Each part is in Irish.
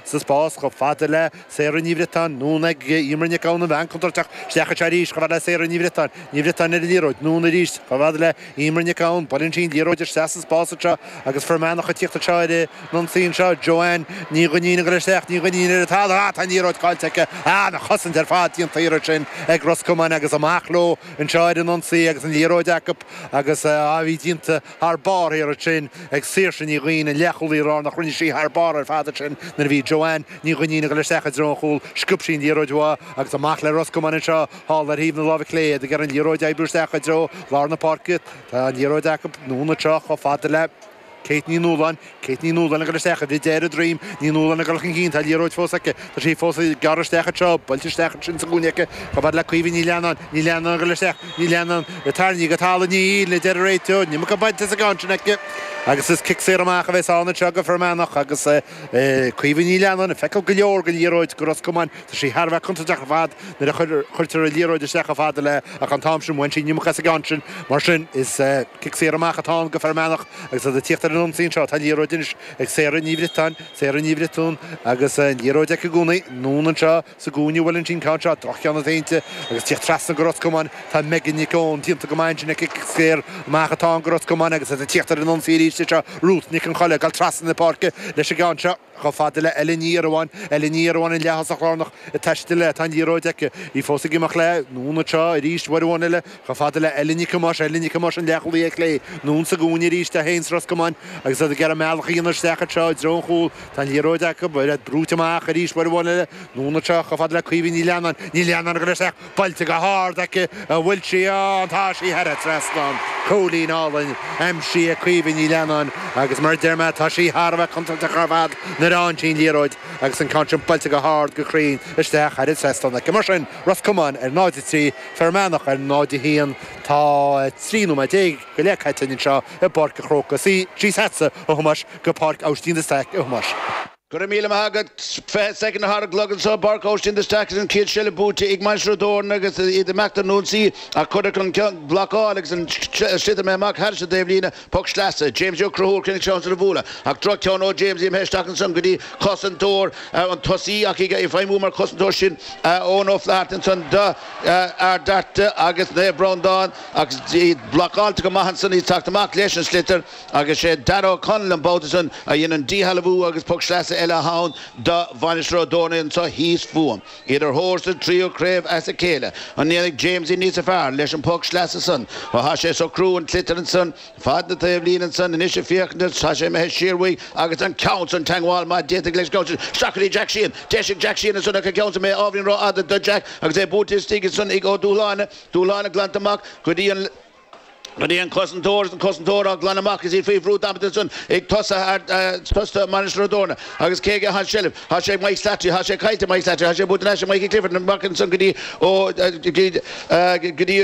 sa spás chomh fada le Sarah Ní Bhriotáin, anonn ag Emer Nic Gabhann, an bhean contúirteach, isteach anseo arís chomh fada le Sarah Ní Bhriotáin, Ní Bhriotáin ar an liathróid, anonn arís chomh fada le Emer Nic Gabhann, buaileann sí an liathróid isteach sa spás anseo agus Fear Manach ag tíocht anseo ar an ionsaí anseo, Joanne Ní Dhuinnín ag goil isteach, Ní Dhuinnín ar an talamh, ah tá an liathróid caillte aici, ah an chosaint ar fad déanta ansin ag Ros Comáin agus amach leo anseo ar an ionsaí agus an liathróid acu agus ó bhí déanta thar barr thiar ansin ag Saoirse Ní Dhuinn, an leathchúlaí láir nach rinne sí thar barr ar fad ansin nuair a bhí Joanne Ní Dhuinnín ag dul isteach i dtreo an chúil, sciob sí an liathróid uaithi agus amach le Ros Comáin anseo thall ar thaobh na láimhe clé, iad ag iarraidh an liathróid a oibriú isteach i dtreo lár na páirce, tá an liathróid acu, anonn anseo chomh fada le Kate Ní Nualláin, Kate Ní Nualláin ag dul isteach i bhfad ar a droim Ní Nualláin ag dul chun cinn, tá an liathróid fós aici, tá sí fós ag gearradh isteach anseo, buailte isteach ansin sa gcúinne aici, chomh fada le Caoimhe Ní Leannáin, Ní Leannáin ag dul isteach, Ní Leannáin tarraingthe go talamh, níl, a deir an réiteoir, an iomarca bainte as an gceann sin aici agus is cic saor amach a bheas ann anseo do Fear Manach agus Caoimhe Ní Leannáin ag feiceáil go leor den liathróid do Ros Comáin. Tá sí thar a bheith contúirteach ar fad nuair a chuirtear an liathróid isteach chomh fada léi ach an t-am sin bhain sí an iomarca as an gceann sin. Mar sin, is cic saor amach atá ann do Fear Manach agus iad ag tíocht ar an ionsaí anseo. Tá an liathróid anois ag Sarah Ní Bhriotáin, Sarah Ní Bhriotáin, agus an liathróid aici i gcónaí. Anonn anseo sa gcúinne a bhfuil an ceann seo, droch-cheann déanta, agus ag tíocht trasna do Ros Comáin. Tá Megan Nic Eoin déanta go maith ansin aici, cic saor amach atá ann do Ros Comáin agus iad ag tíocht ar an ionsaí arís anseo. Ruth Nic an Cholla ag dul trasna na páirce leis an gceann seo. Chomh fada le Ellen Ní Eireamhóin, Ellen Ní Eireamhóin an leath-thosach lárnach ag taisteal léi, tá an liathróid aici, í fós ag imeacht léi, anonn anseo arís, uair amháin eile, chomh fada le Ellen Nic Thomáis, Ellen Nic Thomáis an leathchúlaí ar chlé, anonn sa gcúinne arís, 1-, Ros Comáin, agus iad ag iarraidh a mbealach a dhéanamh isteach anseo i dtreo an chúl, tá an liathróid acu, oiread, brúite amach arís uair amháin eile, anonn anseo, chomh fada le Caoimhe Ní Leannáin, Ní Leannáin ag dul isteach, Buailte go hard aici a bhfuil sí, ah tá sí thar an trasnán cúilín álainn aimsithe ag Caoimhe Ní Leannáin agus mar a deir mé tá sí thar a bheith contúirteach ar fad nuair a fhaigheann sí an liathróid agus an ceann sin buailte go hard go cruinn istigh thar an trasnán aici mar sin Ros Comáin ar 0-3 Fear Manach ar 0-1 tá 13 nóiméad go leith caite againn anseo i bPáirc an Chrócaigh síos chuig Tomás go Páirc Óistín Staic a Thomáis. Go raibh míle maith agat. Fiche soicind ar an gclog anso i bPáirc Óistín de Staic agus an chéad seilbh buaite ag Mainistir Ó dTorna agus iad ag imeacht ar an ionsaí ach cuireadh an ceann blocáil agus an sliotar imithe amach thar an dtaobhlíne, poc sleasa. Jamesie Ó Conchúir chun an seans a bhualadh ach droch ceann ó Jamesie imithe isteach ansan go dtí cosantóir an tosaí ach é ag feidhmiú mar chosantóir sin Eoin Ó Flatharta ansan d'Ard Fhearta agus Naomh Breandán agus iad blocáilte go maith ansan, iad ag teacht amach leis an sliotar. Agus sé Darragh O'Connell an babhta san a dhein an díshealbhú agus poc sleasa eile a théann do Mhainistir Ó dTorna anseo thíos fúm. Iad ar thóir sa tríú craobh as a chéile. An ndéanfaidh Jamesie níos fearr leis an poc sleasa san? Ó tá sé ag socrú an tsliotair ansan fad na taobhlíne ansan anois ag féachaint tá sé imithe siar uaidh agus an ceann san teagmháil maith déanta leis an gceann sin. Isteach go dtí Jack Sheehan, deis ag Jack Sheehan ansan ach an ceann san imithe ábhairín ró fhada do Jack agus é buailte istigh ansan ag Ó Dúshláine. Dúshláine glanta amach go dtí an. Nuair a bhí an cosantóir, an cosantóir á glanadh amach is í faoi bhrú damanta ansan ag tosaigh Mainistir Ó dTorna agus cé aige atá an tseilbh? Tá sé ag Mike Slattery, tá sé caillte ag Mike Slattery, tá sé buaite anois ag Mikey Clifford, amach ansan go dtí Ó, go dtí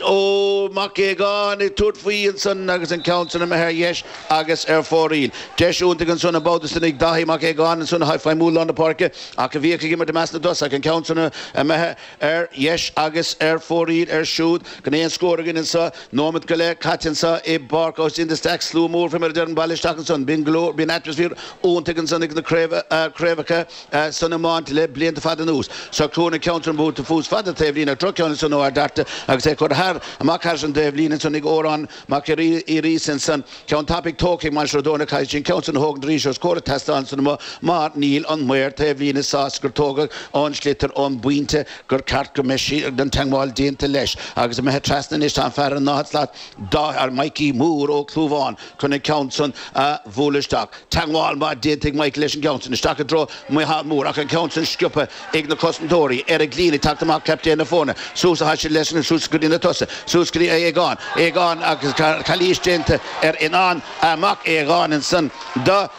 Ó Mac Aogáin ag tabhairt faoi ansan agus an ceann san imithe ar dheis agus ar fóraoil. Deis iontaigh ansan an babhta san ag Dáithí Mac Aogáin ansan atá ag feidhmiú i lár na páirce ach a bhíodh ag imirt i measc na dtosach, an ceann san imithe Ar dheis agus ar fóraoil ansúd gan aon scór againn anso. Nóimeat go leith caite anso i bPáirc Austin de Staic, slua mór faoi mar a deirim bailithe isteach ansan. Bíonn glór, bíonn atmaisféar iontaigh ansan ag na craobh, craobhacha san iomáint le blianta fada anuas. Seo chugainn an ceann san buailte suas fad na taobhlíne, droch-cheann ansan ó Ard Fhearta agus é curtha thar, amach thar an taobhlíne ansan ag Órán, Amach arís ansan ceann tapaidh tógtha ag Mainistir Ó dTorna caithfidh sé an ceann san a thógaint arís os comhair an tseastáin san amuigh mar níl an maor taobhlíne sásta gur tógadh an sliotar ón bpointe gur cheart go mbeadh an teangmháil déanta leis agus imithe trasna anois tá an fear i ndá shlat Mikey Mór Ó Clúmháin chun an ceann san a bhualadh isteach. teagmháil maith déanta ag Michael leis an gceann san isteach i dtreo Mhicheál Mór, ach an ceann san sciobtha ag na cosantóirí. Eric Leen ag teacht amach captaen na foirne, suas a thaise leis agus suas go dtí na tosaigh, suas go dtí Aodhagán. Aodhagán agus calaois déanta ar Fhionnán Mac Aodhagáin ansan do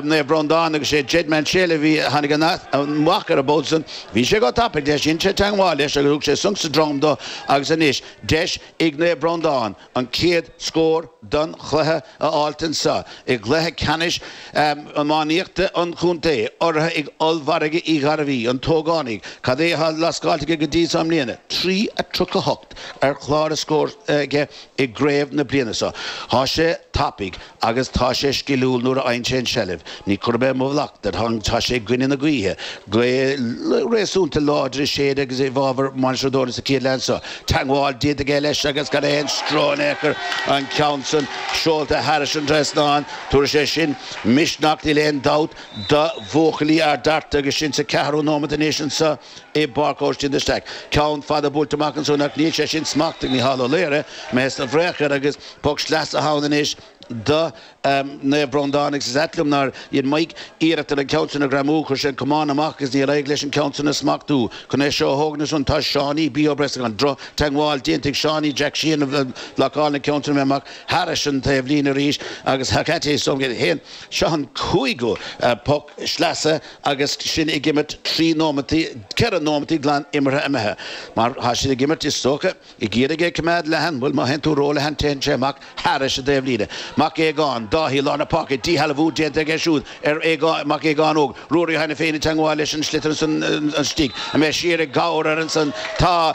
Naomh Breandán agus sé Jedd Maunsell a tháinig amach air an babhta san. Bhí sé go tapaidh leis, dhein sé teagmháil leis agus thug sé sonc sa droim do agus anois deis ag Naomh Breandán, an chéad scór don chluiche a fháilt anseo i gcluiche ceannais iománaíochta an chontae, urraithe ag Ollmhargadh Uí Ghairbhí, an t-ógánach. Cad é atá lascáilte aige go dtí so i mbliana? Trí a tríocha hocht ar chlár a scóir aige i gcraobh na bliana so. Tá sé tapaidh. Agus tá sé sciliúil nuair a fhaigheann sé an tseilbh. Ní chuirfidh mé mo mhallacht air, tá sé i gcoinne na gaoithe, gaoth réasúnta láidir ag séideadh agus é i bhfabhar Mhainistir Ó dTorna sa chéad leath seo. Teagmháil déanta aige leis agus gan aon stró in aon chor, an ceann san seolta thairis an trasnán, tabharfaidh sé sin misneach, níl aon dabht, do bhuachaillí Ard Fhearta agus sinn sa ceathrú nóimeat anois anso. i bPáirc Austin de Staic. Ceann fada buailte amach ansúd, ach níl sé sin smachtaithe ag Mícheál Ó Laoghaire, mé sna bhréagair, agus poc sleasa thall anois do Naomh Breandán, agus is ait liom nár dhein Mike iarracht ar an gceann san a ghreamú, chuir sé an camán amach agus níor éirigh leis an gceann san a smachtú. Chun é seo a thógaint ansúd, tá Seánie B. Ó Brosnacháin, drochtheagmháil déanta ag Seánie Jack Sheehan ag blocáil an ceann san imithe amach thairis an taobhlíne arís, agus Hecate Soviet fhéin. Seo an cúigiú poc sleasa. agus sinn ag imirt trí nóimeataí, ceithre nóimeataí glan imeartha imithe, mar tá siad ag imirt, is dócha, ag iarraidh é a choimeád leathan, bhuel, má théann tú róleathan téann sé amach thairis an dtaobhlíne. Mac Aogáin, Dáithí i lár na páirce, díshealbhú déanta aige siúd ar Aogán, Mac Aogáin Óg, Ruairí cheana féin i dteangmháil leis an sliotar ansan istigh, imithe siar ag gabhar ar ansan, tá,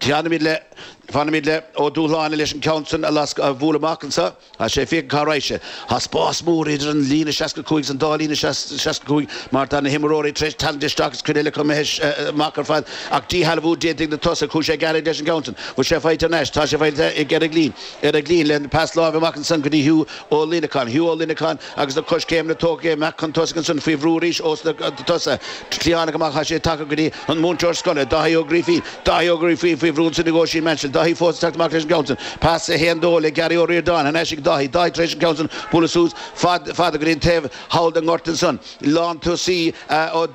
Fanfaimid le, fanfaimid le, Ó Dúshláine leis an ceann san a lascadh, a bhualadh amach anso. Tá sé ag féachaint cá raghaidh sé. Tá spás mór idir an líne seasca cúig is an dá líne seasca cúig mar tá na himreoirí tar éis tarraingt isteach is cuid eile acu imithe amach ar fad ach díshealbhú déanta ag na tosaigh. Chuaigh sé gearr leis an gceann san. Bhfuil sé faighte anois? Tá sé faighte ag Eric Leen. Eric Leen le pas láimhe amach ansan go dtí Hugh Ó Luineacháin. Hugh Ó Luineacháin. agus na coiscéimeanna tógtha amach chun tosaigh ansin faoi bhrú arís ós na tosaithe cliathánacha amach tá sé tagtha go dtí an múinteoir scoile, Dáithí Ó Grífín, Dáithí Ó Grífín faoi bhrú ansin ag Oisín Maunsell, Dáithí fós ag teacht amach leis an gceann sin, pas 1-2 le Gary Ó Ríordáin thar n-ais ag Dáithí, Dáithí tar éis an ceann sin a bhualadh suas fada, fada go dtí an taobh thall den ngort ansan, lántosaí ó,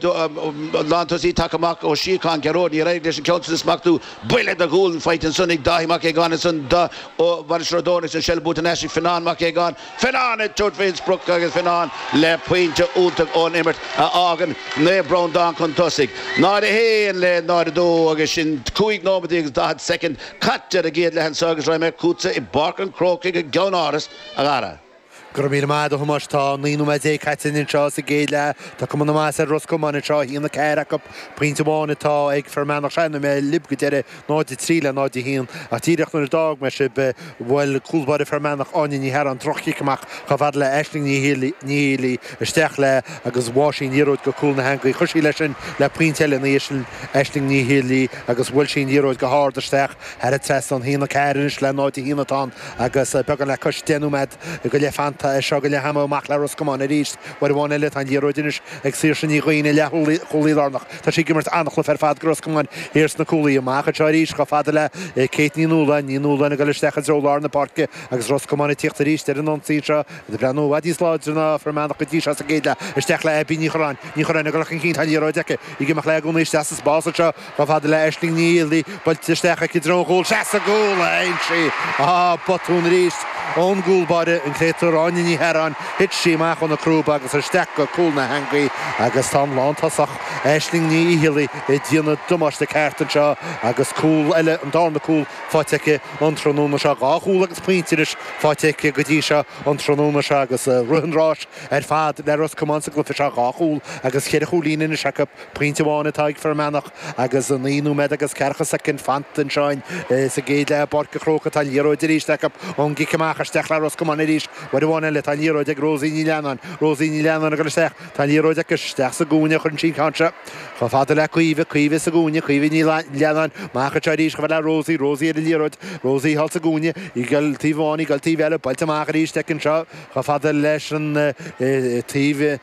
lántosaí tagtha amach, Ó Síocháin, Gearóid, níor éirigh leis an ceann sin a smachtú, buille de ghualainn faighte ansan ag Dáithí Mac Aogáin ansan do Mhainistir Ó dTorna, an seilbh buaite thar n-ais ag Fionán Mac Aogáin, Fionán ag tabhairt faoin sprioc agus Fionán le pointe iontach ón imirt a fhágann Naomh Breandán chun tosaigh, 0 1 le 0 2 agus sin cúig nóimeataí agus daichead soicind caite ar an gcéad leath anseo agus raghaimid chugatsa i bPáirc an Chrócaigh i gceannáras, a Gharry. Go raibh míle maith agat, a Thomáis. Tá naoi nóiméad déag caite anseo sa gcéad leath. Tá cuma na maitheasa ar Ros Comáin anseo, 1 4 acu. Pointe amháin atá ag Fear Manach, sin ó bhí mé libh go deireadh. 0:03 le 0:01, ach díreach nuair a d'fhág mé sibh, bhuail cúl báire Fear Manach, Áine Ní Chearáin, droch-chic amach chomh fada le Aisling Ní Áinlí, isteach léi agus bháigh sí an liathróid go cúl na heangaí. Chuir sí leis sin le pointe eile ina dhiaidh sin, Aisling Ní Áinlí, agus bhuail sí an liathróid go hard isteach thar an trasnán. 1:04 anois le 0:01 atá ann agus beagán le cois deich nóiméad go leith fanta anseo go leath ama. Amach le Ros Comáin arís, uair amháin eile. Tá an liathróid anois ag Saoirse Ní Dhuinn, an leathchúlaí lárnach. Tá sí ag imirt an-chluiche ar fad do Ros Comáin thiar sna cúlaithe amach anseo arís, chomh fada le Kate Ní Nualláin, Ní Nualláin ag dul isteach i dtreo lár na páirce agus Ros Comáin ag tíocht arís ar an ionsaí seo, iad ag breathnú i bhfad níos láidre ná Fear Manach go dtí seo sa gcéad leath. Isteach le Abbie Ní Chorráin, Ní Chorráin ag dul chun cinn, tá an liathróid aici, í ag imeacht léi i gcónaí isteach sa spás anseo chomh fada le Aisling Ní Áinlí, Buailte isteach aici i dtreo an chúil. Seans ar chúl anseo. Á! Botún arís! Ón gcúl báire, an créatúr, Áine Ní hEaráin, thit sí amach óna crúba agus isteach go cúl na heangaí agus tá an lántosach, Aisling Ní Fhicheallaigh, ag déanamh damáiste ceart anseo agus cúl eile, an darna cúl, faighte aici an tráthnóna seo. Dhá chúl agus pointe anois faighte aici go dtí seo an tráthnóna seo agus tá rith an ráis ar fad le Ros Comáin sa gcluiche seo. Dhá chúl agus ceithre chúilín anois acu. Pointe amháin atá ag Fir Manach agus naoi nóiméad agus ceathracha soicind fanta anseo insa gcéad leath i bPáirc a' Chrócaigh atá an liathróid arís acu ón gcic amach. Isteach le Ros Comáin arís uair amháin eile. Tá an liathróid ag Rosie Ní Leannáin. Rosie Ní Leannáin ag dul isteach. Tá an liathróid aici. Isteach sa gcúinne a chuireann sí an ceann seo. Chomh fada le Caoimhe. Caoimhe sa gcúinne. Caoimhe Ní Leannáin. Amach anseo arís chomh fada le Rosie. Rosie ar an liathróid. Rosie thall sa gcúinne. Í ag dul taobh amháin. Í ag dul taobh eile. Buailte amach arís aici anseo chomh fada leis an taobh.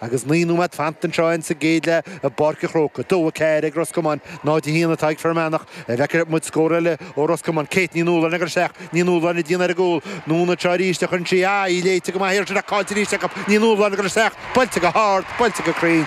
Agus naoi nóiméad fanta anseo in sa gcéad leath i bPáirc a' Chrócaigh, 2-4 ag Ros Comáin, 0-1 atá ag Fir Manach. An bhfeicfidh muid scór eile ó Ros Comáin? Kate Ní Nualláin ag goil isteach, Ní Nualláin ag déanamh ar an gcúl, anonn anseo arís a chuireann sí, ah, í léite go maith ansin ach caillte arís acu, Ní Nualláin ag goil isteach, buailte go hard, buailte go cruinn,